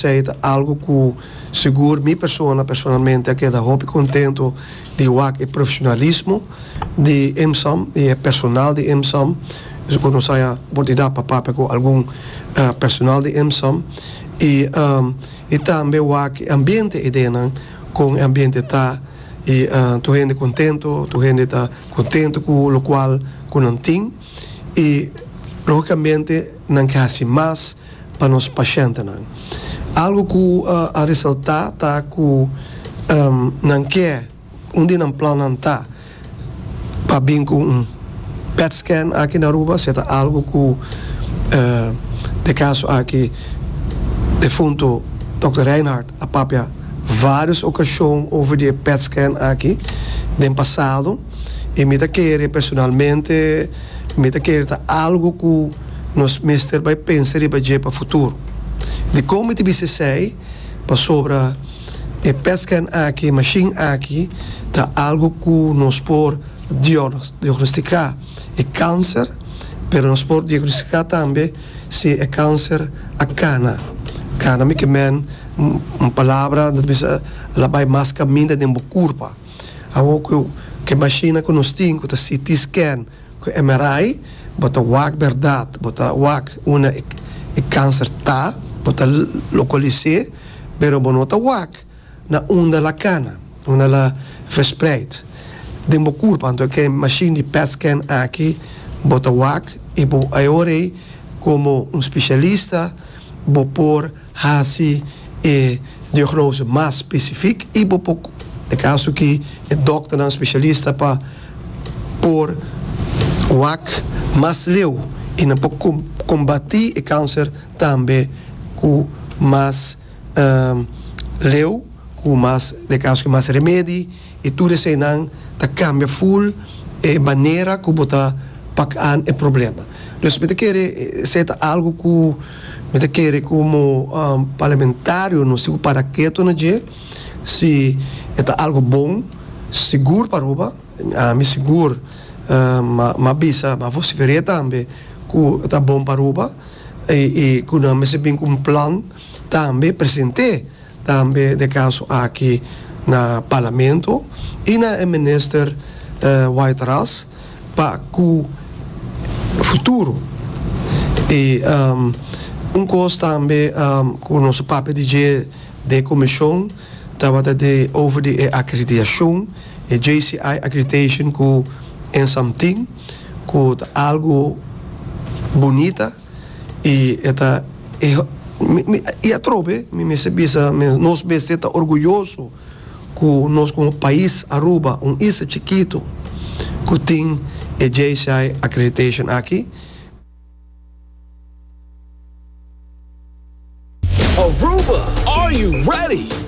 Esei ta algu ku sigur mi persona personalmente a keda hopi kontento di wak e profeshonalismo di IMSAM i e personal di IMSAM. Esei ku nos a haya oportunidad pa papia ku algun personal di IMSAM i i tambe wak e ambiente idenan kon e ambiente ta i tur hende kontento tur hende ta kontento ku lokual ku nan tin. i logicamente nan ke haci mas pa nos pacientenan. Algo cu a resalta ta cu nan ke un di nan plannan ta pa bin cu un pet scan aki na Aruba si e ta algo cu e caso aki defunto Dokter Rijnhard a papia varios ocasion over di e pet scan aki den pasado. i mi ta kere personalmente mi ta kere ta algu ku nos mester bai pensa riba dje pa futuro. Di kon mi ta bisa esei? Pasobra e petskèn aki, e mashin aki ta algu ku nos por diagnostiká e kanser, pero nos por diagnostiká tambe si e kanser a kana. Kana mi ke men un palabra ta bisa la bai mas kaminda den bo kurpa. Awor cu e mashina cu nos tin cu ta CT scan cu MRI bo ta wak berdad, bo ta wak unda e cancer ta, bo ta localise, pero bo no ta wak na unda la cana, unda la verspreid den bo curpa. Anto cu e mashin di pet scan aki bo ta wak y bo awor ey como un specialista bo por. Hasi e diagnose mas specific y bo por e caso aki e dokternan specialista pa por wak mas leu y nan por combati e cancer tambe cu mas leu cu mas te caso aki mas remedi y tur eseinan ta cambia full e manera cu bo ta pac an e problema. Nos mi ta kere seta algo cu. Mi ta kere komo parlamentario nos tin ku para keto na dje si e ta algu bon sigur pa Aruba. Mi sigur m'a bisa, m'a vosifer'é tambe ku e ta bon pa Aruba i ku nan mester bin ku un plan tambe present'é. Tambe na e kaso aki na Parlamento i na e Minister White Ras pa ku futuro i un kos tambe ku nos a papia di dje den komishon tabata di over di e akreditashon e JCI accreditation ku Ensamtin ku ta algu bunita. y e ta e y atrobe mi mester bisa men nos mester ta orguyoso cu nos como pais Aruba un isla chikito cu tin e JCI accreditation aki. Aruba are you ready?